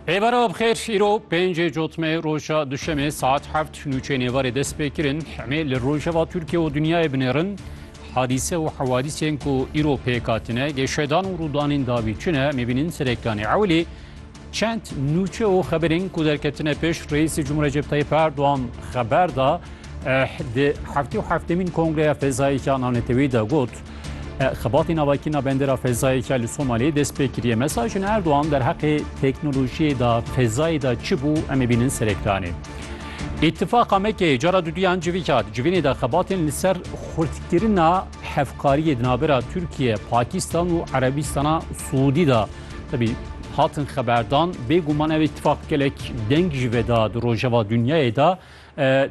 Êvara bixêr îro pêncê cotme roja duşemê saet heft nûçê nêvarê dest pê kirin hemê li rojeva Tirkiye û dinyayê binêrin hadîse û hewadîsên ku îro pêk hatine gêşedan û rûdanên dawî çi ne mêbînin serêkanê ewilî çend nûçe û xeberên ku derketine pêş reîsê Cumhur Recep Tayyip Erdoğan xeber da di heftê û heftemîn kongreya fezayî ya nanetewî de got. Xebatê navakirina bendera fezayê ke li Somaliyê dest pê kiriye. Mesajên Erdogan derheqê teknolojiyê de fezayê de çi bû em ê bînin ser ekranê. Îttifaqa Mekeyê cara duduyan civî kat. Civînê de xebatên li ser xurtkirina hevkariyê di navbera Tirkiye, Pakistan û Erebistana Siûdî de tebî hatin xeberdan. Bêguman ev îttifaq gelek deng ji ve da di rojeva dinyayê de.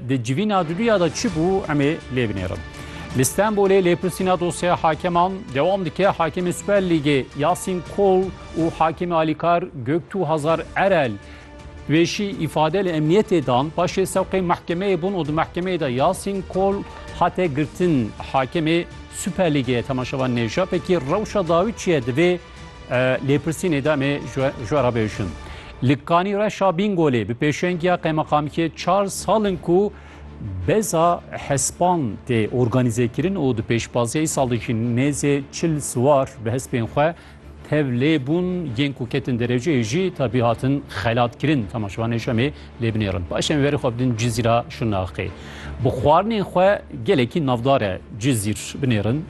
Di civîna duduya de çi bû emê lê binêrin. Li Stenbolê lêpirsîna dosyeya hakeman dewam dike. Hakemê Super Lîgê Yasîn Kol û hakemê alîkar Göktuğ Hazar Erel wêşî îfade li emniyetê dan. Paşê sewqê mehkemeyê bûn û di mehkemeyê de Yasîn Kol hate girtin. Hakemê Super Lîgê Temaşevan Nevşapekî rewşa dawî çi ye divê Lêpirsînê de mê ji we re bêjin. Li Kanî Reşa Bîngolê bi pêşengiya qemeqamkê çar sal in ku beza hespan tê organîzekirin û di pêşbaziya îsal de jî nêzê çil siwar bi hespên xwe tevlê bûn yên ku ketin derejeyê jî tabî hatin xelatkirin. Temaşevanê Şemê lê binêrin. Paşê em verê xwe bidin Cizîra Şirnaqê. Bi xwarinên xwe gelekî navdar e Cizîr binêrin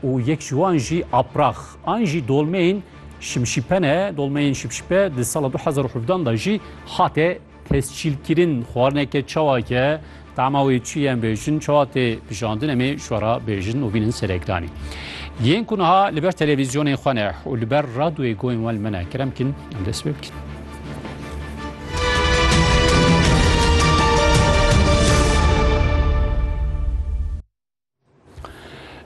û yek ji wan jî aprax an jî dolmeyên şimşîpen e. Dolmeyên şimşîpe di sala 2017 da jî hate tescîlkirin xwarineke çawake Tama wê çi ye em bêjin, çawa tê bijandin em ê ji we re bêjin û bînin serekdanî. Yên ku niha li ber televîzyonên xwe ne û li ber radyoyê guhên wan li me ne kerem bikin em dest pê bikin.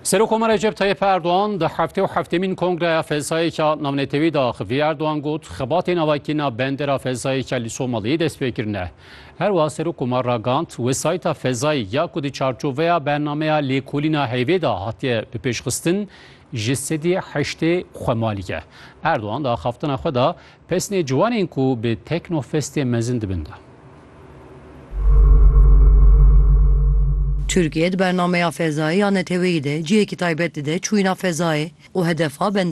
Serokkomar Recep Tayyip Erdoğan di heftê û heftêmîn kongreya felsayêka navnetewî de axivî Erdoğan got xebatê navakîna bendera felsayêka li Somaliyê dest pê kirine. Her wiha Serokkomar ragand wesayîta fezayî ya ku di çarçoveya bernameya lêkolîna heyvê de hatiye bipêşxistin ji sedî heştê xwemalî ye. Erdoğan di axaftina xwe de Pesnê ciwanên ku bi Tekno Festê mezin dibin da. Tirkiye di bernameya fezayê ya neteweyî de cihekî taybet dide çûyîna fezayê û hedefa bende.